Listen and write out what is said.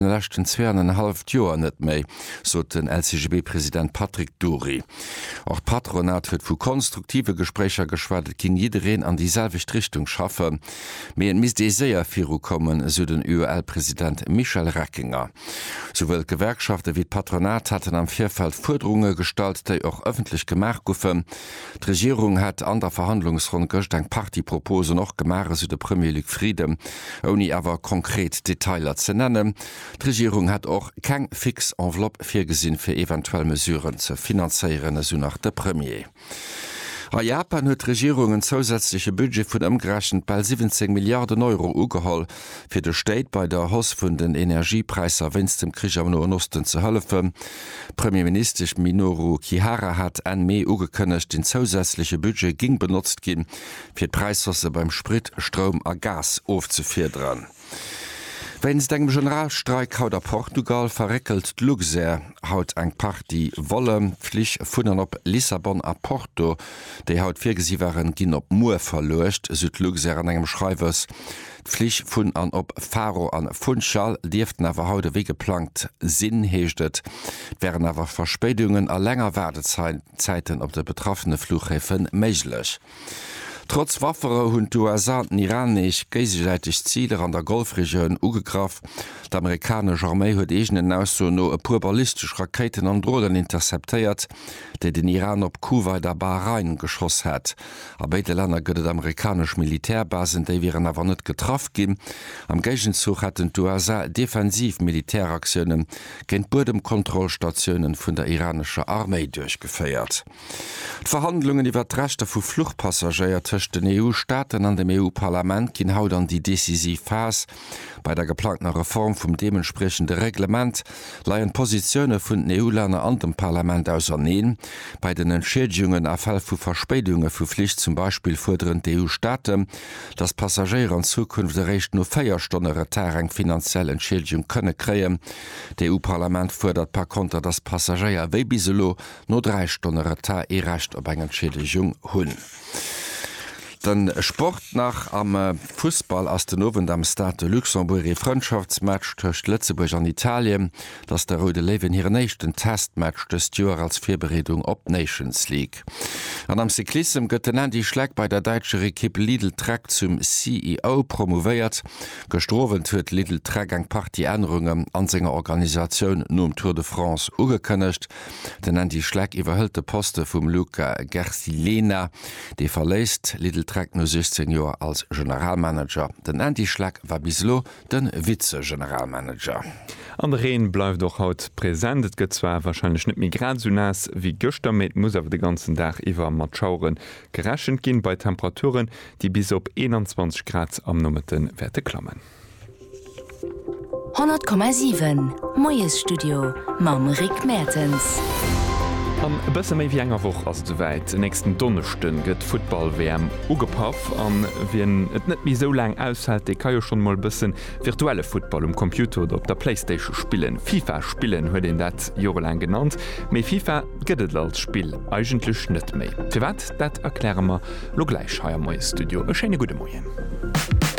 den leschten zwee an en halleft Joer net méi, sot den LCGB-President Patrick Dury. Och d'Patronat huet vu konstruktive Gespréicher geschwat, et géing jiddereen an déi selwecht Richtung schaffen, mee et misst ee séier viru kommen, esou den UEL-President Michel Reckinger. Souwuel d'Gewerkschafte wéi d'Patronat haten am Virfeld Fuerderunge gestallt, déi och ëffentlech gemaach goufen. D'Regierung hätt an der Verhandlungsronn gëscht eng Partie Proposen och gemaach, esou de Premier Luc Frieden, ouni awer konkret Detailer ze nennen. D'Regierung hätt och keng fix Enveloppe virgesinn, fir eventuell Mesuren ze finanzéieren, esou nach de Premier. A Japan huet d'Regierung en zousätzleche Budget vun ëmgerechent bal 17 Milliarden Euro ugeholl. fir de Stéit bei der Hausse vun den Energiepräisser wéinst dem Krich am Noen Osten ze hëllefen. D'Premierministesch Minoru Kihara hat Enn Mee ugekënnegt, den zousätzleche Budget géing benotzt ginn, fir d'Präishausse beim Sprit, Stroum a Gas ofzefiederen. Wéinst engem Generalstreik haut a Portugal verréckelt d'Luxair haut eng Partie Volle. D'Flich vun an op Lissabon a Porto, déi haut virgesi waren, ginn op muer verluecht, sou d'Luxair an engem Schreiwes. D'Flich vun an op Faro an Funchal dierften awer haut ewéi geplangt sinn, heescht et. Et wären awer Verspéidungen a länger Waardezäiten op de betraffene Fluchhäfe méiglech. Trotz Wafferou hunn d'USA an den Iran nees géisesäiteg Ziler an der Golfregioun ugegraff. D'amerikanesch Arméi huet eegenen Aussoen no e puer ballistesch Rakéiten an Dronen interceptéiert, déi den Iran op Kuwait a Bahrain geschoss hätt. A béide Länner gëtt et amerikanesch Militärbasen, déi wieren awer net getraff ginn. Am Géigenzuch hätten d'USA defensiv Militäraktioune géint d'Buedemkontrollstatiounen vun der iranescher Arméi duerchgeféiert. D'Verhandlungen iwwert d'Rechter vu Fluchpassagéier tëscht den EU-Staaten an dem EU-Parlament ginn haut an déi decisiv Phas. Bei der geplangtener Reform vum deementspriechende Reglement leien d'Positioune vun den EU-Länner an dem Parlament auserneen. Bei den Entschiedegungen a Fäll vu Verspéidunge vu Flich zum Beispill fuerderen d'EU-Staate, datt d'Passagéier an Zukunft eréischt no véier Stonne Retard eng finanziell Entschiedegung kënne kréien. D'EU-Parlament fuerdert par konter, datt d'Passagéier wéi bis elo no dräi Stonne Retard ee Recht op eng Entschiedegung hunn. Den Sport nach, am Fussball ass den Owend am Stade de Luxembourg ee Frëndschaftsmatch tëscht Lëtzebuerg an Italien. Et ass de Roude Léiwen hiren éischten Testmatch dëst Joer als Virbereedung op d'Nations League. An am Cyclissem gëtt den Andy Schleck bei der däitscher Ekipp Lidl-Trek zum CEO promouvéiert. Gëschter Owend huet Lidl-Trek eng Partie Ännerungen an senger Organisatioun nom Tour de France ugekënnegt. Den Andy Schleck iwwerhëlt de Poste vum Luca Gersilena, dee verléisst Lidl Trek no 16 Joer als Generalmanager. Den Andy Schleck war bis elo de Vize-Generalmanager. An de Reen bleift och haut present. Et gëtt zwar warscheinlech net méi grad esou naass wéi gëschter, mee et muss awer de ganzen Dag iwwer mat Schauere gerechent ginn, bei Temperaturen, déi bis op 21 Grad am Nomëtte wäerte klammen. 100,7 Moiesstudio mam Rick Mertens. An e bësse méi wéi enger Woch ass et esouwäit, e nächsten Donneschde gëtt d'Futtball-WM ugepaff. A wien et net méi esou laang aushält, dee ka jo schonn emol e bësse virtuelle Futtball um Computer oder op der Playstation spillen. Fifa spillen huet een dat jorelaang genannt, mee Fifa gëtt et als Spill eigentlech net méi. Firwat, dat erkläre mer elo gläich hei am Moiesstudio. E schéine gudde Moien.